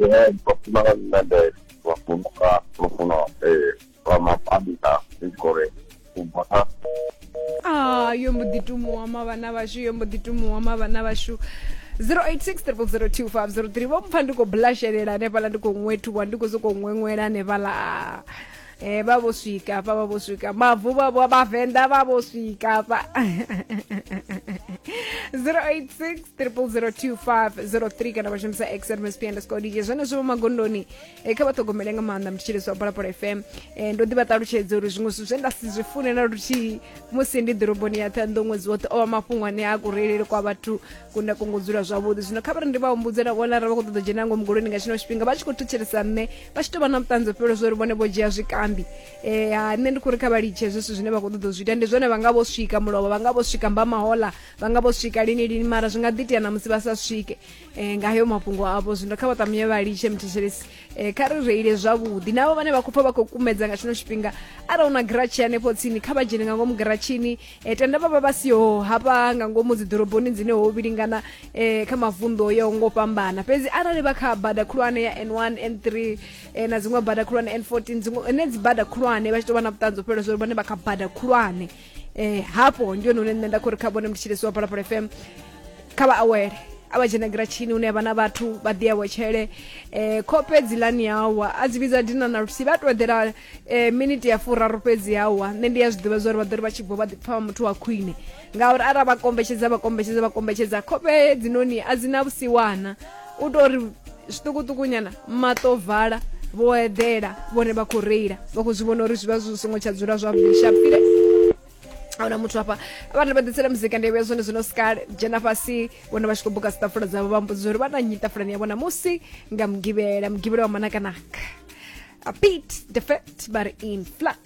Ee, vhafumakadzi na nḓevhe vha funga lufuno ee lwa mapanda ndi tshi khou ri u bva kha Ah, yo mbo ḓi tumuwa mavhana vhashu yo mbo ḓi tumuwa mavhana vhashu 0860025003 vho mpfa ndi khou blashelela hanefhaḽa ndi khou ṅwethuwa ndi khou sokou ṅweṅwela hanefhaḽa e vha vho swika hafha vha vho swika mavu vha vho vhavenḓa vha vho swika hafha 086 002503 kana vha shumisa xmsp underscore dj zwenezwo vho magondoni e kha vha ṱhogomele nga maanḓa mutshitsheleso wa phalaphala fm e ndo ḓi vha ṱalutshedza uri zwiṅwe zwithu zwe nda si zwi fune na luthihi musi ndi ḓoroboni ya ṱhanḓo ṅwedzi woṱhe o vha mafhungo ane a kureleli kwa vhathu kunda kongo dzula zwavhuḓi zwino kha vha ri ndi vha humbudze na vhona ra vha khou ṱoḓa dzhena ngomu golweni nga tshino tshifhinga vha tshi khou thetshelesa nṋe vha tshi tou vha na vhuṱanzi fhelo zwo ri vhone vho dzhia zwikambi um ha nṋe ndi khou ri kha vha litshe zwithu zwine vha khou ṱoḓa u zwi ita ndi zwone vha nga vho swika mulovha vha nga vho swika mbamahola vha nga vho swika lini lini mara zwi nga ḓi tea na musi vha sa swike um nga heyo mafhungo avho zwino kha vha ṱamunye vha litshe muthetshelesi um kha ri reile zwavhuḓi navho vhane vha khou pfa vha khou kumedza nga tshino tshifhinga arali u na giratshi hanefho tsini kha vha dzhene nga ngomu giratshini e, tenda vha vha vha siho hafha nga ngomu dziḓoroboni dzine ho vhilingana e, kha mavunḓu o yaho ngo fhambana fhedzi arali vha kha bada khulwane ya n1 n3 e, na dziṅwe bada khulwane n14 dziṅwe ene dzi bada khulwane vha tshi tou vha na vhuṱanzi o fhelela zwa uri vhone vha kha bada khulwane eh hafho ndi hone hune nṋe nda khou ri kha vhone mutshilisi wa phalaphala fm kha vha awele a vha dzhena giratshini hune vha na vhathu vha ḓi awetshele um khofhe dzilani yawa a dzi vhidza dina na lusi vha to eḓela e miniti ya furaru fhedzi ya wa nṋe ndi ya zwi ḓivha zwori vha ḓo ri vha tshi bva vha ḓi pfha muthu wa khwine ngauri arali vha kombetshedza vha kombetshedza vha kombetshedza khofhe hedzinoni a dzi na vhusiwana u tou ri zwiṱukuṱukunyana maṱo vala vho eḓela vhone vha khou reila vha khou zwi vhona uri zwi vha zwi songo tsha dzula zwavhuḓi shapile ahuna muthu hafha vhana vha ḓitsela muzika ndi vhuya zwone zwino sikale dzhena fhasi vhona vha tshi khou buka sitafula dzavho vha mbudza uri vha na nyi tafulani ya vhona musi nga mugivhela mugivhela wa manakanaka a pete defet ba re in flux